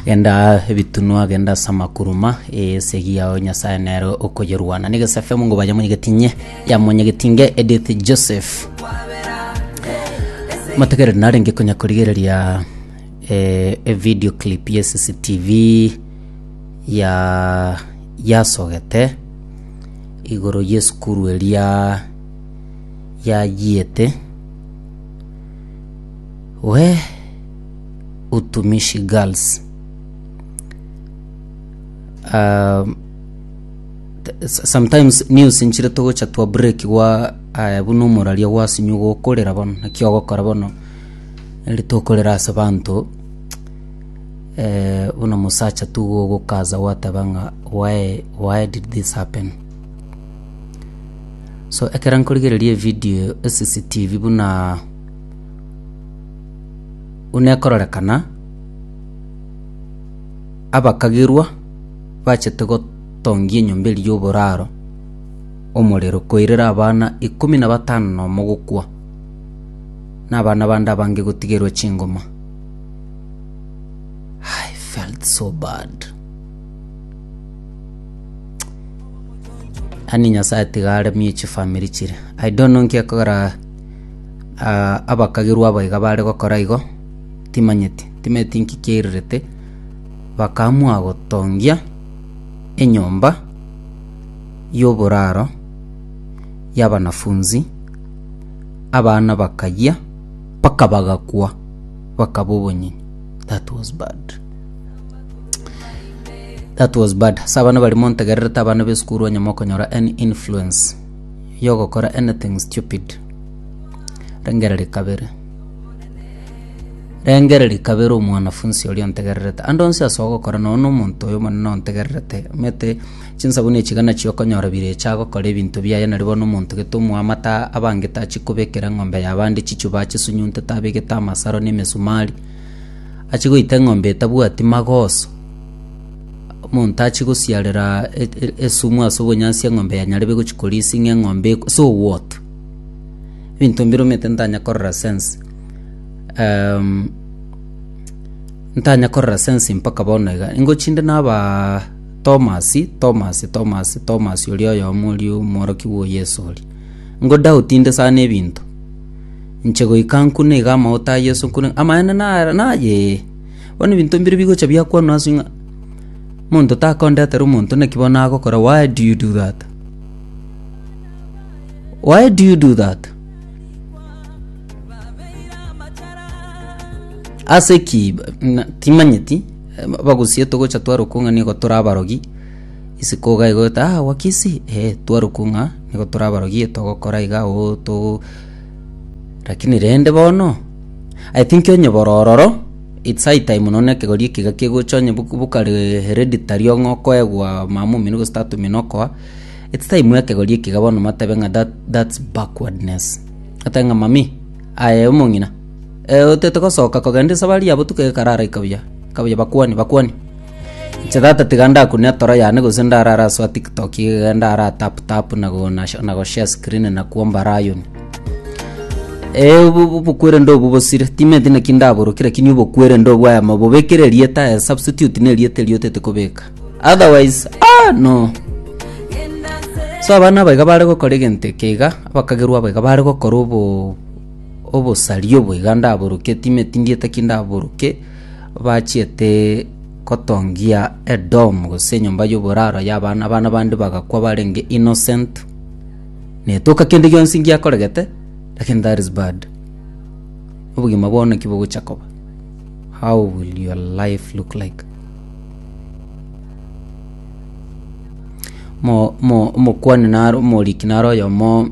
genda ebitunwa genda ase amakuruma esegi yao nyasaye nere okoyerwana nigo sfm ngo bayamonyegetinye yamonyegetinge edith joseph mategereri narenge konya korigereria eh, evideo clip ya cctv ya yasogete igoro yesukuru eria yayiete Weeh utumishi girls. Um, t- s- sometimes news nchire togocha twa break gwa aya buna omoraria gwasinywa gokorera bono naki ogokora bono eri tokorera ase banto eh, buna mosacha tu gogokaza gwateba ng'a why, why did this happen so ekero nkorigereria evidio cctv buna Unekororekana abakagerwa bachete gotongia enyomba eria y'oboraro omorero koirera abana ikomi na batano nomo gokwa, na abana bande abange gotigerwa chingoma. I felt so bad. Ani Nyasae tiga aremie chifamiri chire. I don't know nki ekogera Aa, abakagirwa abo iga bare gokora igo, timanyeti, timanyeti nki kiairerete, bakaamua gotongia enyomba y'oboraro y'abanafunzi, abana bakayia, mpaka bagakwa, bakaba obonyinyi. That was bad, that was bad. Ase abana baria montegererete abana b'esukuru onye mokonyora any influence. yogokora anything stupid. Rengereria kabere. Rengereria kabere omwanafunsi oria ontegererete. Ande onsi ase ogokora nonye na omonto oyo omonene ontegererete. Omanyete chinsabuni echi iga nachio okonyora birecha agokora ebinto biaye nari bono omonto gete omoamate aa abangete achi kobekera eng'ombe ya abande chichuba achisunyuntete abegete amasaro na emesumari. Achi goita eng'ombe etabwati magoso. Omonto achie gosiarera e- e- esumu ase obonyansi eng'ombe yaye nyarebe gochia korisia ng'a eng'ombe eko- ase owot. Ebinto mbire omanyete ntanya korora sense ehm, ntanya korora sense mpaka bono iga. Ingo chinde nabaa Tomasi, Tomasi, Tomasi, Tomasi oria oyomo oria omworokigwa o Yeso oria. Ingo doubt inde sana ebinto, inche goika nkune iga amauta a Yeso nkune ng'a, amaene nara nayee. Bono ebinto mbire bigocha biakwanwa ase ng'a monto takondetere omonto naki bono nagokora why do you do that? Why do you do that? Ase ki ba- na- timanyeti eh, ba- bagusie togocha twarokwa ng'a nigo tore abarogi isiko iga igoeta ah wakisi eh twarokwa ng'a nigo tore abarogi togokora iga oo to Lakini rende bono, I think onye borororo, it's high time nonye na ekegori eke iga kegocha onye bu- bokare hereditary ong'e okoegwa mama omino gose tata omino okoa, it's time ekegori eke iga bono matabe ng'a that that's backwardness. Otabe ng'a mami, aye omong'ina, eh otete gosoka kogenda esabari ya botuko iga ekara araika buya, eka buya bakwani bakwani. Inche tata tiga ndakune etoro yane gose ndarara ase tiktok iga ndara tap tap na go na na go share screen na kwomba lion. Eh obo obo obokwerende obwo bosire timanyeti naki ndaborokire lakini obokwerende obwo aya mabobekere erieta aya substitute na erieta erio otete kobeka otherwise aah no. So abana aba iga bare gokora egento eke iga abakagerwa aba iga bare gokora obo obosaria obo iga ndaboroketi timanyeti ndieta ki ndaboroke. bachiete gotongia edom gose enyomba y'oboraro y'abana abana bande bagakwa barenge innocent netoka kende gionsi ngiakoregete lakini that is bad obogima bwao naki bogocha koba how will your life look like mo mo omokwani naro omoriki naro oyomo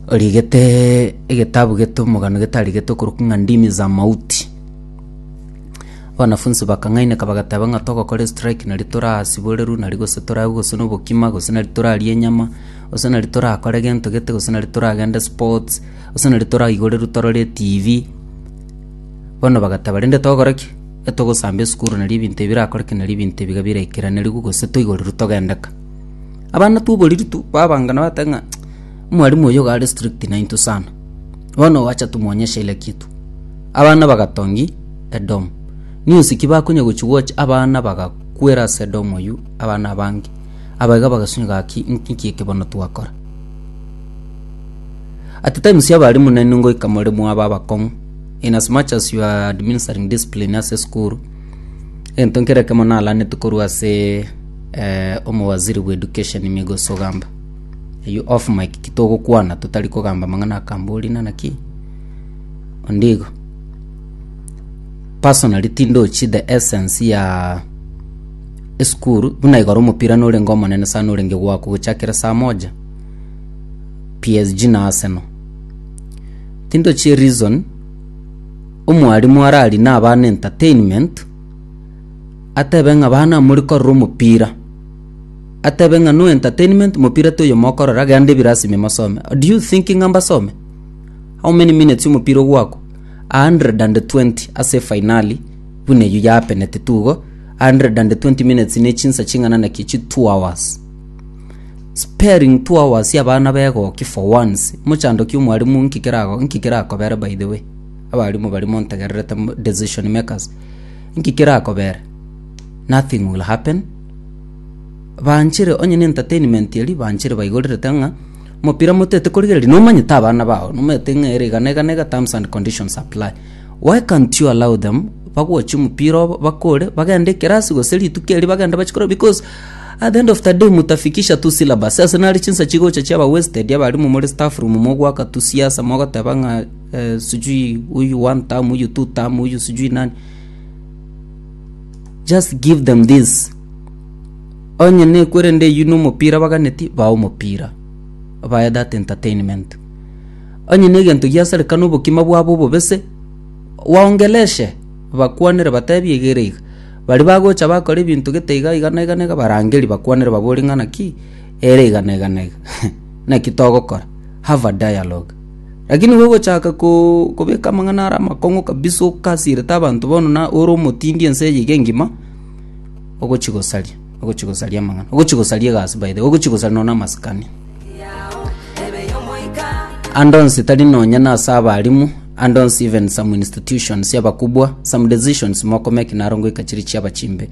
origetee egetabu gete omogano getarigetwe okorokwa ng'a ndimi za mauti. Abanafunsi bakang'aineka bagateba ng'a togokora estrike nari torasiboreru nari gose toranywe gose na obokima gose nari torarie enyama gose nari torakore gento gete gose nari toragende sports gose nari toraigoreru torore etibi. Bono bagateba rende togokora ki? Etogosamba esukuru nari ebinto ebi birakoreke nari ebinto ebiga biraikeranerigwe gose toigoreru togendeka. Abana twoboriri tu babangana bateba ng'a omwalimu oyo iga are strict nainto sana. Bono gwacha tomwonyeshe kila kitu. Abana bagatongi edomu. News ki bakonya gochi gocha abana bagakwera ase edomu eyio abana abange. Aba iga bagasunywa gaki inki inki eke bono twakora. At times abalimu nainwe ngoika more mwabe abakong'u in as much as you are administering discipline ase esukuru egento nkere ekemo nalaneti korwa ase eh, omowaziri bw'education migosi ogamba eyu off mic kitogokwana totari kogamba mang'ana akambori nana ki ondigo personally tindochi the essence ya esukuru buna igoro omopira norenge omonene sana orenge gwako gochakera saa moja psg na arsenal tindochi reason omwarimu arari nabana entertainment Atebe ng'a bana mori korora omopira. Atebe ng'a no entertainment mopira toyo mokorora gende ebirasi ime mosome. Do you think ng'a mbasome? How many minutes omopira ogwakwa? 120 ase finali buna eyio ya peneti tugo 120 minutes ne chinsa ching'ana naki chi two hours. Sparing two hours ya bana ba egoki for once mochandoki omwarimu nki kerago nki kerakobere by the way. Abarimu baria montegererete decision makers. Inki kerakobera? Nothing will happen. Banchire onye entertainment eri banchire baigorerete ng'a omopira motete korigereria nomanyete abana bao nomanyete ng'a ere igana igana iga terms and conditions apply why can't you allow them bagochi omopira obo bakore bagende ekerasi gose rituko eri bagende bachi korora because at the end of the day mutafikisha tu syllabus ase nare chinsa chigocha chiaba wasted abarimu more staff room mogwaka tu siasa mogoteba ng'a. Onye nekwerende eywo nomopira baganeti baa omopira baye that entertainment. Onye negento giasarekana obokima bwabo obobese waongeleshe bakwanere batebi iga ere iga. Baria bagocha bakora ebinto gete iga iga na iga na iga barangeri bakwanere babore ng'a naki ere iga na iga na iga. Naki togokora. Have a dialogue. Lakini gogochaka kobeka amang'ana are amakong'u kabisa okasirete abanto bono na ore omotindi ense eye iga engima, ogochia gosaria, ogochia gosaria amang'ana, ogochia gosaria egasi by the way, ogochia gosaria nonye na amasikani. Ande onsi tari nonye na ase abarimu, ande onsi even some institutions y'abakubwa, some decisions mokomeki naro ngoika chiri chiaba chimbe.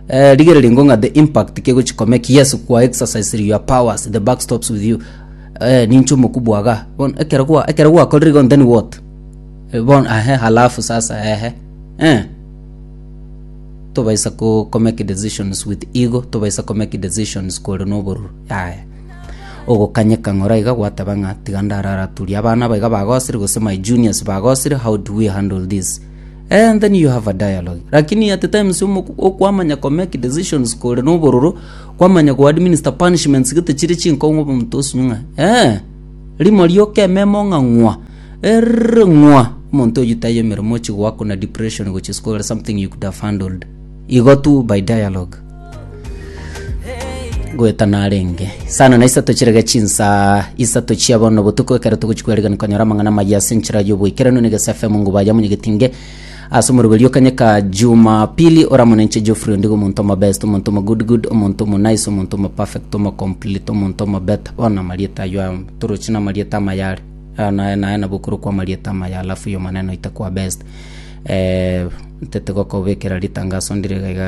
Eh, rigereria ngong'a the impact kegochia komeki, yes kwa exercise your powers, the buck stops with you. Eh, ninche omoku bwaga. Bono ekero gwa ekero gwakorire igo then what? Eh, bono ahe halafu sasa ehe. Eh. Tobaisa ko, ko make decisions with ego, tobaisa ko make decisions kore nobororo. Yaya. Ogokanyeka ng'ora iga gwateba ng'a tiga ndararaturia abana aba iga bagosire gose my juniors bagosire how do we handle this? And then you have a dialogue. Lakini at times omoku okwamanya ko make decisions kore nobororo Kwamanya go administer punishments gete chire chinkong'u omonto osunywe ng'a ee, rimo rioka ememo ng'a ng'wa, errrr ng'wa, omonto oyio taiyo emeremo ochi goakuna depression gochia ase kogera something you could have handled. Igo tu by dialogue. Goeta narenge. Sana na isato chirege chinsaa isato chia bono botuko ekero togochia kwerigereria konyora amang'ana amaya ase enchera y'oboikeranu na egesafe amo ngubaya monyegetinge Ase omoroberio o kanya ka Jumapili, oramonenche Geoffrey Ondigo omonto omobest, omonto omogood good, omonto omonice, omonto omoperfect, omocomplete, omonto omobeta. Bono amarieta ayio aya toroche namarieta amaya are. Aya naye naye nabo okorokwa amarieta amaya alafu y'Omonene oite kwa best. Eh, ntete gokobekera ritangaso ndire iga iga.